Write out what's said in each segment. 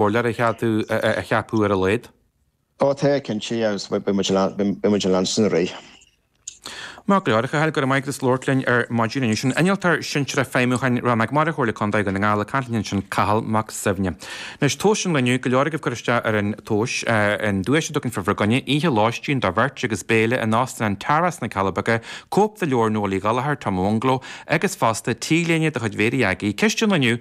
cóp a cheapadh ar a laghad. Ó, tá, cinnte, agus beidh muid in ann sin a rith. Maith go leor, a Chathail, go raibh maith agat as labhairt linn ar maidin inniu. An innealtóir sinsearach feidhmiúcháin Rannóg Mara Chomhairle Contae Dhún na nGall, ag caint linn ansin Cathal Mac Suibhne. Anois, tomhas an Loinnir, go leor agaibh ag cur isteach ar an tomhas, an duais do cheann fómhair againne, oíche lóistín do bheirt agus béile in Óstán Tara sna Cealla Beaga, cóip de leabhar Noel Uí Ghallchóir, Tom Owonglo, agus fosta T-léine de chuid Mhéirí Aggie, ceist an lae inniu!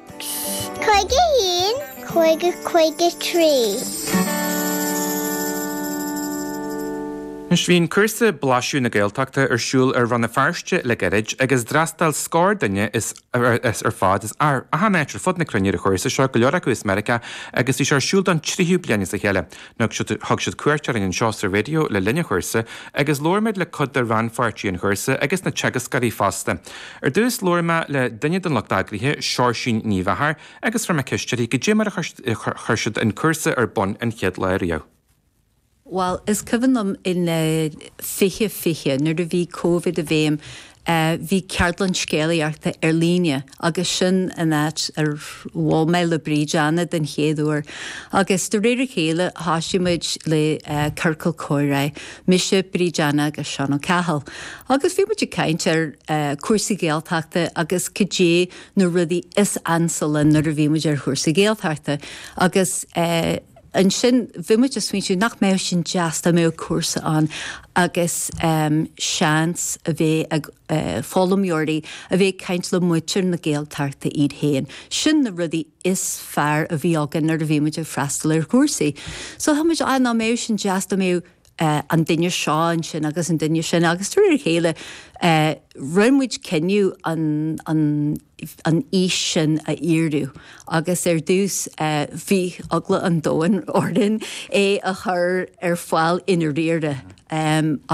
51, 50, 53. Bhí an cúrsa Blaiseadh na Gaeltachta ar siúl i Rann na Feirste le gairid agus d'fhreastail scór duine ar fad as achan áit ar fud na cruinne ar an chúrsa seo, go leor acu as Meiriceá, agus bhí sé ar siúl don tríú bliain as a chéile. Thug siad cuairt orainn anseo sa Raidió le linn an chúrsa agus labhair muid le cuid de rannpháirtithe an chúrsa agus na teagascóirí fosta. Ar dtús, labhair mé le duine den lucht eagraithe, Seoirsín Ní Mheachair, agus chuir mé ceist uirthi cad é mar a chuir siad an cúrsa ar bun an chéad lá riamh. Bhuel, is cuimhin liom in 2020, nuair a bhí Covid i bhfeidhm, a. Bhí ceardlann scéalaíochta ar líne agus sin an áit ar bhual mé le Bríd Anna den chéad uair agus de réir a chéile thosaigh muid le ciorcal comhráidh, mise, Bríd Anna agus Seán Ó Cathail agus bhí muid ag caint ar cúrsaí Gaeltachta agus cad é na rudaí is ansa linn nuair a bhí muid ar chúrsa Gaeltachta agus eh Ansin bhí muid ag smaointiú nach mbeadh sin deas dá mbeadh cúrsa ann agus seans a bheith ag foghlaimeoirí a bheith ag caint le muintir na Gaeltachta iad féin. Sin na rudaí is fearr a bhí againn nuair a bhí muid ag freastal ar chúrsaí. So bhí muid, á, nach mbeadh sin deas dá mbeadh, an duine seo ansin agus an duine sin agus de réir a chéile rinne muid cinneadh an fhís sin a fhíorú agus ar dtús bhí eagla an domhain orainn é a chur ar fáil i ndáiríre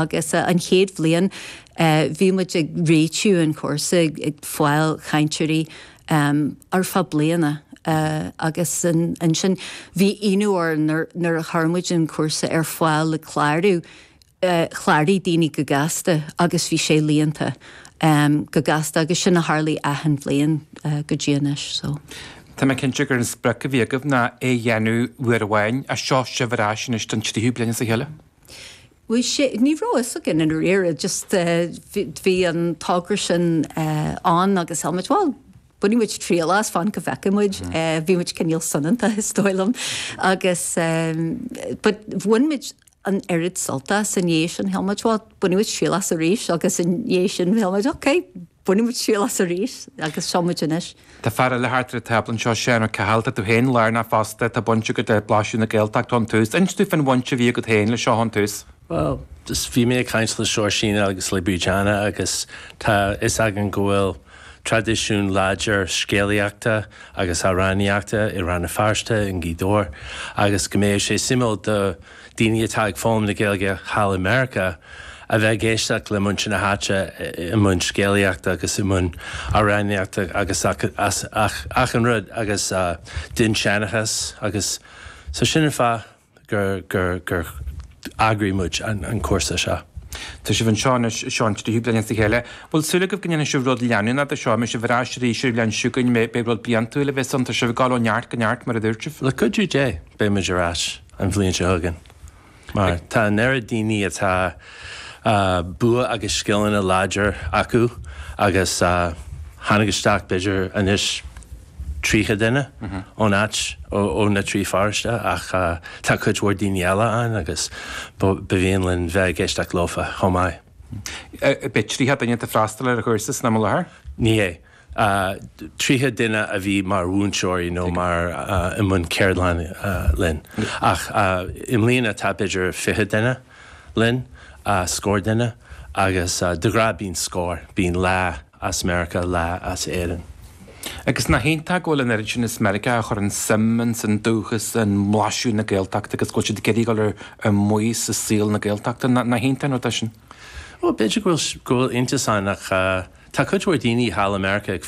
agus an chéad bhliain bhí muid ag réitiú an chúrsa ag fáil cainteoirí um ar feadh bliana agus ansin bhí ionadh orainn nuair a chuir muid an cúrsa ar fáil le clárú, chláraigh daoine go gasta agus bhí sé líonta um go gasta agus sin a tharlaigh achan bhliain go dtí anois so. Tá mé cinnte gur an sprioc a bhí agaibh ná é a dhéanamh uair amháin, ach seo sibh ar ais anois don tríú bliain as a chéile? Bhí sé, ní raibh a fhios againn i ndáiríre, just bhí an togra sin ann agus shíl muid, bhuel, bainfidh muid triail as, fan go bhfeicfidh muid. Bhí muid cinéal soineanta is dóigh liom agus but bhain muid an oiread sult as i ndiaidh sin, shíl muid, bhuel, bainfidh muid triail as arís agus i ndiaidh sin shíl muid, ok, Bainfidh muid triail as arís agus seo muid anois. Tá fear eile thart ar an tábla anseo, Seán Ó Cathail. Tá tú féin lárnach fosta, tá baint agat le Blaisiú na Gaeltachta ón tús. Inis dúinn faoin bhaint a bhí agat féin le seo ón tús. Bhuel, bhí mé ag caint le Seoirsín agus le Bríd Anna agus tá fhios againn go bhfuil traidisiún láidir scéalaíochta agus amhránaíochta i Rann na Feirste, i nGaoth Dobhair agus go mbeadh sé suimiúil do Daoine atá ag foghlaim na Gaeilge thall i Meiriceá a bheith ag éisteacht le muintir na háite i mbun scéalaíochta agus i mbun amhránaíochta agus achan rud agus dinnseanchas agus so sin an fáth gur eagraigh muid an cúrsa seo. Tá sibh anseo anois, Seán, trí bliana as a chéile. An bhfuil súil agaibh go ndéanfaidh sibh rud leanúnach as seo? An mbeidh sibh ar ais arís ar an bhliain seo chugainn? B'fhéidir rud bliantúil a bheith ann? Tá sibh ag dul ó neart go neart mar a dúirt mé. Le cuidiú Dé, beidh muid ar ais. an bhliain seo chugainn. Mar tá an oiread daoine atá bua agus scileanna láidir acu agus tháinig isteach b'fhéidir anois tríocha duine ón áit, ó na trí pharóiste ach tá cuid mhór daoine eile ann agus ba mhian linn bheith ag éisteacht leofa chomh maith. Beidh tríocha duine ag freastal ar an chúrsa san am i láthair? Ní hé. 30 duine a bhí mar mhúinteoirí nó mar i mbun ceardlann linn ach i mbliana tá b'fhéidir 20 duine linn, scór duine agus de ghnáth bíonn scór, bíonn leath as Meiriceá, leath as Éirinn. Agus nach iontach go bhfuil an oiread sin as Meiriceá a chuireann suim ins an dúchas, i mblaisiú na Gaeltachta agus go bhfuil siad ag iarraidh dul ar maos i saol na Gaeltachta, nach iontach an rud é sin? Bhuel, b'fhéidir go bhfuil iontas ann ach tá cuid mhór daoine thall i Meiriceá ag